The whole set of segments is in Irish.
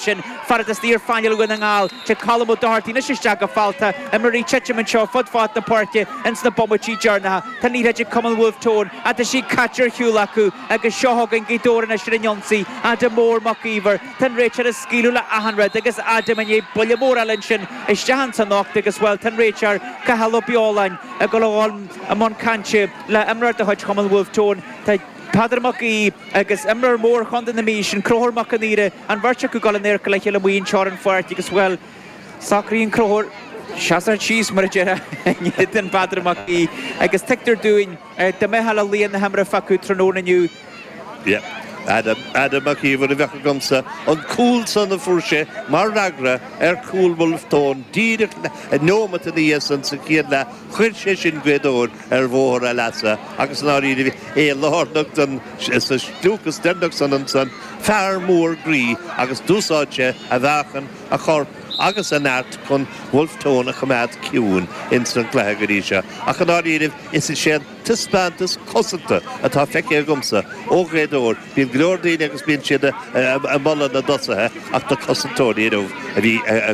sin fad is tá sé ar phainéal Dhún na nGall Tá Colm O Doherty anois isteach go fabhtach, imreoirí ag titim anseo fud fad na páirce ins na bomaití deireanacha Tá an liathróid ag cumann Bhulf Tón ach tá sí caite ar shiúl acu agus seo chugainn Gaoth Dobhair anois ar an ionsaí, Adam Mór Mac Íomhair Tá an réiteoir ag scaoileadh le achan rud agus Adam i ndiaidh buille mór eile ansin isteach ins an ucht agus bhuel tá an réiteoir, Cathal Ó Beoláin, ag dul a dhul i mbun cainte le imreoir de chuid chumann Bhulf Tón Tá Peadar Mac Aoidh agus imreoir mór Chontae na Mí sin Conchúr Mac an Aoire, An bheirt acu ag dul in adharca a chéile amuigh i lár an pháirc agus, bhuel, socraíonn an réiteoir é a shocrú síos, mar a déarfá, i ndiaidh do Pheadar Mac Aoidh agus tuigtear dúinn, dá mbeadh laoch na himeartha acu tráthnóna inniu, Yep. Adam, Adam Mac Íomhair a bheadh agamsa, an cúl san a fuair sé mar fhreagra ar chúl Bhulf Tón díreach neomat ina dhiaidh san sa chéad leath, chuir sé sin Gaoth Dobhair ar bhóthar a leasa agus i ndáiríribh é lárnach ins an sliocht deireanach san ansan fear mór groí agus d'úsáid sé a mheáchan, a chorp agus a neart chun Wolfe Tone a choimeád ciúin ins an gcluiche go dtí seo ach i ndáiríribh is é an taispeántas cosanta atá feicthe agamsa ó Ghaoth Dobhair Bíonn go leor daoine agus bíonn siad ag moladh na dtosaithe ach na cosantóirí inniu do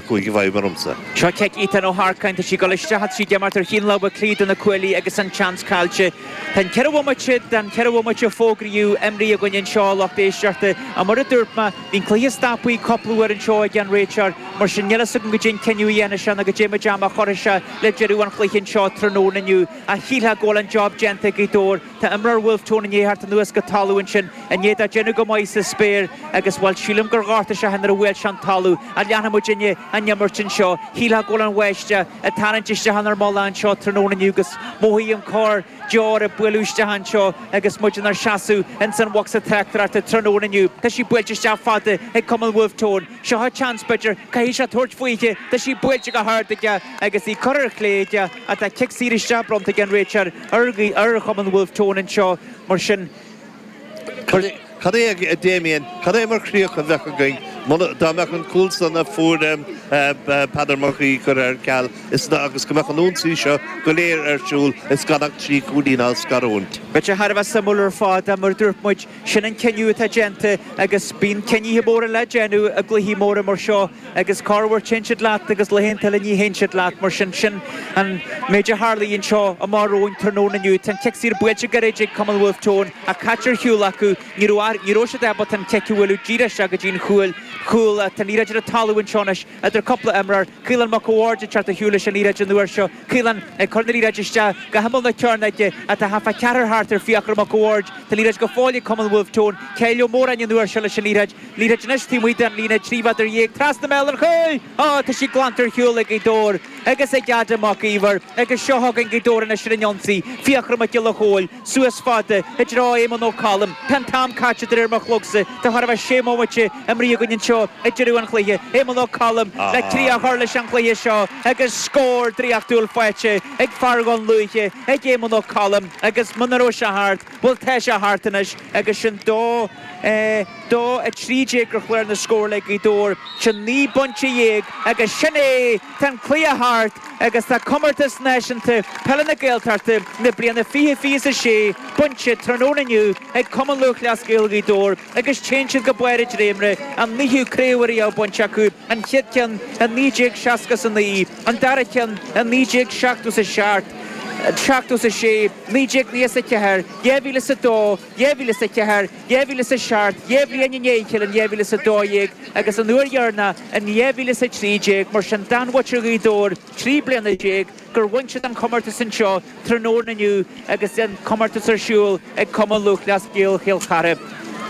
chuaigh i bhfeidhm go mór ormsa. Seo cic Ethan Ó hArcáin, tá sí ag dul isteach tá sí ag imeacht ar thaobh na láimhe clé de na cuaillí agus an seans caillte. Tá an ceithre bhomaite den cheithre bhomaite a fógraíodh imeartha againn anseo a lucht éisteachta ach mar a dúirt mé, bhí an cluiche stoptha cúpla uair anseo ag an réiteoir mar sin níl fhios agam caidé an cinneadh a dhéanfaidh sé nó go dtéimid a mhacasamhail seo le deireadh an chluiche anseo tráthnóna inniu ach shílfeá go bhfuil an job déanta ag Gaoth Dobhair Tá imreoir Bhulf Tón i ndiaidh theacht anuas go talamh ansin i ndiaidh dó déanamh go maith sa spéir agus, bhuel, sílim gur ghortaigh sé é féin nuair a bhuail sé an talamh. An leanfaidh muid i ndiaidh na himeartha anseo? Shílfeá go bhfuil an bháisteach ag tarraingt isteach inár mullach anseo tráthnóna inniu agus mothaím corr deoir ag bualadh isteach anseo agus muid inár seasamh ins an bhocsa tráchtaireachta tráthnóna inniu. Tá sí buailte isteach fada ag Cumann Bhulf Tón. Seo an seans, b'fhéidir, caithfidh sé tabhairt faoithi. Tá sí buailte go hard aige agus í curtha ar chlé aige ach tá cic saor isteach bronnta ag an réiteoir. ar ar chumann Wolfe Tone anseo mar sin. Cad é, a Dhamien, cad é mar chríoch a bheadh againn dá mbeadh an cúl san a fuair Peadar Mac Aoidh curtha ar ceal is agus go mbeadh an ionsaí seo go léir ar siúl is gan ach trí chúilín á scarúint? Beidh sé thar a bheith suimiúil ar fad, mar a dúirt muid. Sin an cinneadh atá déanta agus bíonn cinnithe móra le déanamh i gcluichí móra mar seo agus corr uair téann siad leat agus laethanta eile ní théann siad leat. Mar sin, sin an méid a tharlaigh anseo amach romhainn tráthnóna inniu. Tá an cic saor buailte go réidh ag cumann Wolfe Tone ach caite ar shiúl acu. Ní raibh siad ábalta an cic a bhualadh díreach isteach go dtí an chúl. Tá an liathróid ar an talamh anseo anois idir cúpla imreoir. Caolán Mac an Bhaird ag teacht ar shiúl leis an liathróid an uair seo. Caolán ag cur na liathróide isteach go himeall na cearnóige ach tá thart fá cheathrar thart ar Fiachra Mac an Bhaird. Tá liathróid go fóill ag cumann Bhulf Tón. Kyle Ó Móráin an uair seo leis an liathróid. Liathróid anois taobh amuigh den líne, trí mhéadar dhéag trasna i mbéal an chúil! Á, tá sí glanta ar shiúl ag Gaoth Dobhair agus ag Adam Mac Íomhair agus seo chugainn Gaoth Dobhair anois ar an ionsaí, Fiachra Mac Giolla Chomhaill, Suas fada i dtreo Éamonn Ó Coilm, tá an t-am caite de réir mo chlogsa. Tá chóir a bheith sé mhoimite imrithe againn anseo ag deireadh an chluiche. Éamonn Ó Coilm le críoch a chur leis an gcluiche seo agus scór draíochtúil faighte ag fear an chluiche ag Éamonn Ó Coilm agus muna raibh sé thart, bhuel tá sé thart anois agus sin dó. dó a 13 ar chlár na scór le Gaoth Dobhair, sin naoi bpointe dhéag agus sin é! Tá an cluiche thart agus tá Comórtas Náisiúnta Peile na Gaeltachta na bliana fiche fiche is a sé bainte tráthnóna inniu ag Cumann Lúthchleas Gael Ghaoth Dobhair agus téann siad go barr an dréimire, an naoú craobh ariamh bainte acu, an chéad cheann i 1960 is a naoi, an dara ceann i 1970 is a seacht, seachtó is a sé, naoi déag nócha is a ceathair, dhá mhíle is a dó. dhá mhíle is a ceathair, dhá mhíle is a seacht, dhá bhliain i ndiaidh a chéile in dhá mhíle is a dó dhéag agus an uair dheireanach in dhá mhíle is a trí déag, mar sin d'fhan muintir Ghaoth Dobhair trí bliana déag gur bhain siad an comórtas anseo tráthnóna inniu agus an comórtas ar siúl ag Cumann Lúthchleas Gael Chill Chartha.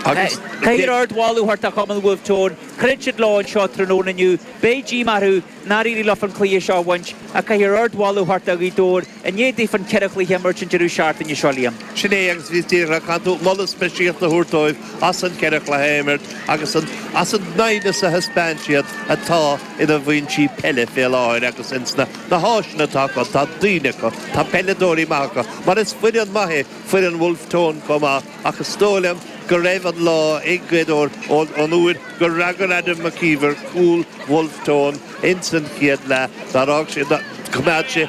Caithfear ardmholadh a thabhairt do chumann Wolfe Tone, throid siad leo anseo tráthnóna inniu, beidh díomá orthu Nár éirigh leofa an cluiche seo a bhaint ach caithfear ardmholadh a thabhairt do Ghaoth Dobhair i ndiaidh daofa ceithre chluiche a imirt an deireadh seachtaine seo, Liam. Sin é agus bhíos díreach, caitheann tú moladh speisialta a thabhairt dóibh as an gceithre chluiche a imirt agus as an doimhneas a thaispeáin siad atá ina bhfoinsí peile fé láthair agus ins na háiseanna atá acu. Tá daoine acu. Tá peileadóirí maithe acu. Mar is foireann maith é foireann Wolfe Tone chomh maith. Ach is dóigh liom go raibh an lá ag Gaoth Dobhair ón uair gur fhreagair Adam Mac Íomhair cúl Bhulf Tón ins an chéad leath d'fhág sé, choimeád sé,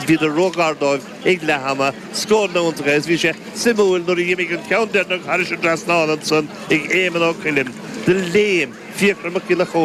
bhíodar ró-ghar dóibh ag leath ama. Scóranna iontacha agus bhí sé suimiúil nuair a dh'imigh an ceann deireanach thairis an trasnán ansan ag Éamonn Ó Coilm do léim Fiachra Mac Giolla Chomhaill.